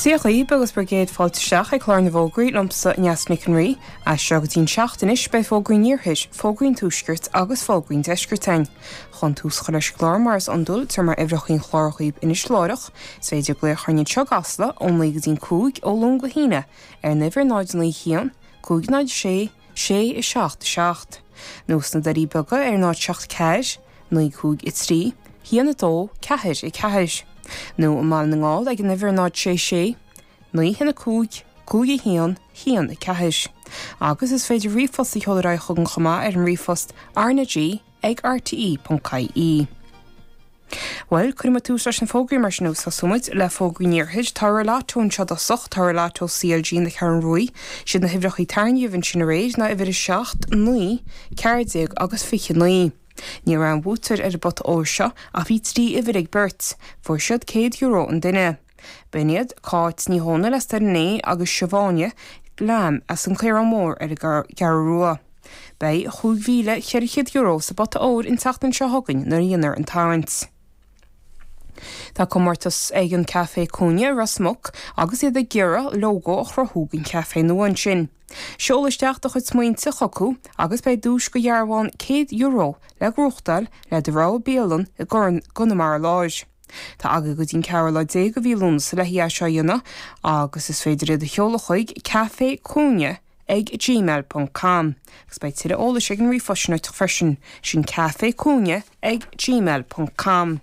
Dia dhaoib, agus bhur gcéad fáilte isteach ag Clár na bhFógraí liomsa, Aonghus Mac an Rí. As seo go dtí an seacht anois beidh fógraí an Iarthair, fógraí an Tuaiscirt agus fógraí an Deiscirt ann. Chun tús a chur leis an gclár mar is iondúil tabharfaidh mé uimhreacha an chláir dhaoib anois láithreach, is féidir glaoch orainn anseo i gCasla ón naoi go dtí an cúig, ó Luan go hAoine, ar an uimhir 091 506 sé a seacht a seacht, nó sna Doirí Beaga ar náid seacht ceathair, naoi cúig a trí, haon a dó, ceathair a ceathair, nó i mBaile na nGall ag an uimhir 0 sé sé, naoi haon a cúig, cúig a haon, haon a ceathair. Agus is féidir ríomhphost a sheoladh ar aghaidh chugainn chomh maith ar an ríomhphost, rnag ag rte.ie. Bhuel, cuirfidh muid tús leis na fógraí mar sin agus tosóidh muid le fógraí an iarthair. Toradh lató anseo i dtosach. Toradh lató CLG na Ceathrún Ruaidh. Siad na huimhreachaí a tarraingíodh ansin aréir ná uimhir 7, 9, 14 agus 29. Ní raibh aon bhuaiteoir ar an bpota óir seo ach bhí trí uimhir ag beirt. Fuair siad €100 an duine. B'in iad Cáit Ní Dhomhnaill as Doire Né agus Siobhán Lamb as an Caorán Mór ar an gCeathrú Rua. Beidh €5,400 sa bpota óir an tseachtain seo chugainn nuair a dhéanfar an tarraingt. Tá comórtas ag an Café Cúinne i Ros Muc agus iad ag iarraidh lógó a chruthú don chafé nua ansin. Seol isteach do chuid smaointe chucu agus beidh duais de dhearbhán €100 le gnóthachtáil le do rogha bialann i gConamara Láir. Tá agat go dtí an ceathrú lá déag de mhí Lúnasa le haghaidh é seo a dhéanamh agus is féidir iad a sheoladh chuig café cúinne ag gmail ponc com agus beidh tuilleadh eolais ag an ríomhphost sin uait freisin, sin café cúinne ag gmail ponc com.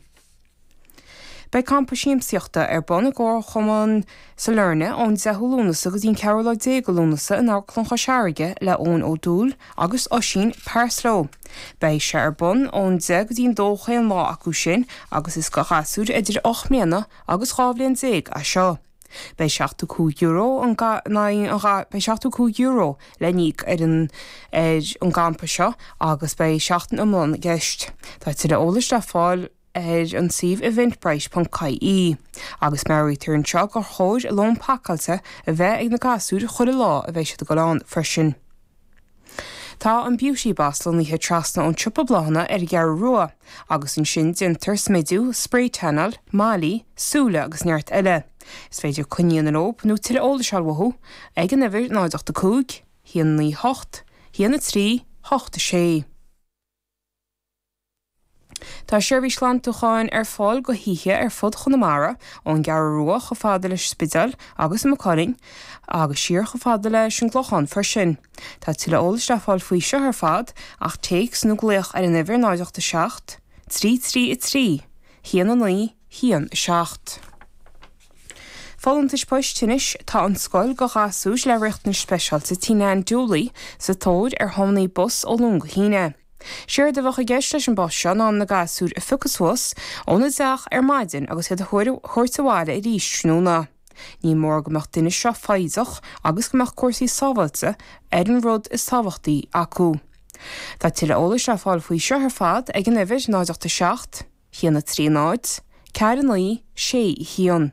Beidh campa siamsaíochta ar bun i gComharchumann. Sailearna, ón 10ú Lúnasa go dtí an ceathrú lá déag de Lúnasa in Amharclann Chois Fharraige le Eoin Ó Dubhghaill agus Oisín Parslow. Beidh sé ar bun ón 10 go dtí an 2 chaon lá acu sin agus is do ghasúir idir ocht mbliana agus dhá bhliain déag é seo. Beidh €75 an Beidh €75 le n-íoc ar an ar an gcampa seo agus beidh seachtain iomlán i gceist. Tá tuilleadh eolais le fáil ar. ar an suíomh eventbrite.ie agus meabhraítear anseo gur chóir lón pacáilte a bheith ag na gasúir chuile lá a bheidh siad ag dul ann freisin. Tá an Beauty Boss lonnaithe trasna ón siopa bláthanna ar an gCeathrú Rua agus ansin déantar smidiú, spray tanáil, malaí súile agus neart eile. Is féidir coinní a dhéanamh leob nó tuilleadh eolais a fháil uathu ag an uimhir 085 198 1 3 8 6. Tá seirbhís ghlantúcháin ar fáil do thithe ar fud Chonamara, ón gCeathrú Rua chomh fada leis an Spidéal agus Maigh Cuilinn, agus siar chomh fada leis an gClochán freisin. Tá tuilleadh eolais le fáil faoi seo ar fad ach téacs nó glaoch ar an uimhir 087 333 19 17. Folúntais Poist Anois tá an scoil do ghasúir le riachtanais speisialta Tigh Nan Dooley sa tóir ar thiomanaí bus ó Luan go hAoine. Séard a bheadh i gceist leis an bpost seo ná na gasúir a phiocadh suas óna dteach ar maidin agus iad a thabhairt abhaile arís tráthnóna. Ní mór go mbeadh an duine seo foighdeach agus go mbeadh cúrsaí sábháilte ar an rud is tábhachtaí acu. Tá tuilleadh eolais le fáil faoi seo ar fad ag an uimhir 087 130 4961.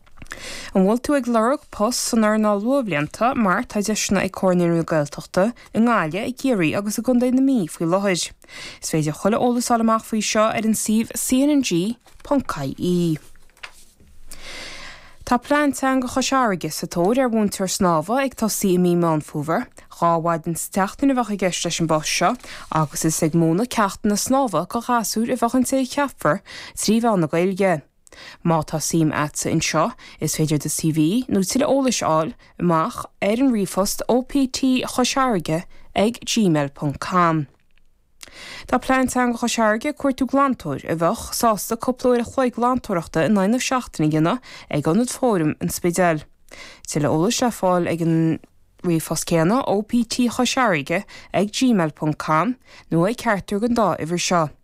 An bhfuil tú ag lorg post san earnáil luathbhlianta mar tá deiseanna ag Comhar Naíonraí na Gaeltachta i nGaillimh, i gCiarraí agus i gContae na Mí faoi láthair? Is féidir tuilleadh eolais a fháil amach faoi seo ar an suíomh cnng.ie. Tá Plean Teanga Chois Fharraige sa tóir ar mhúinteoir snámha ag tosaí i mí Meán Fómhair. Dhá mhaidin sa tseachtain a bheadh i gceist leis an bpost seo agus is ag múineadh ceachtanna snámha do ghasúir a bheadh an té a cheapfar trí mheán na Gaeilge. Má tá suim agatsa anseo, is féidir do CV nó tuilleadh eolais a fháil amach ar an ríomhphost OPT Chois Fharraige ag gmail ponc com. Tá Plean Teanga Chois Fharraige ag cuartú glantóir a bheadh sásta cúpla uair a chloig glantóireachta in aghaidh na seachtaine a dhéanamh ag Ionad Fóraim an Spidéil. Tuilleadh eolais le fáil ag an ríomhphost céanna OPT Chois Fharraige ag gmail ponc com nó ag ceachtar den dá uimhir seo.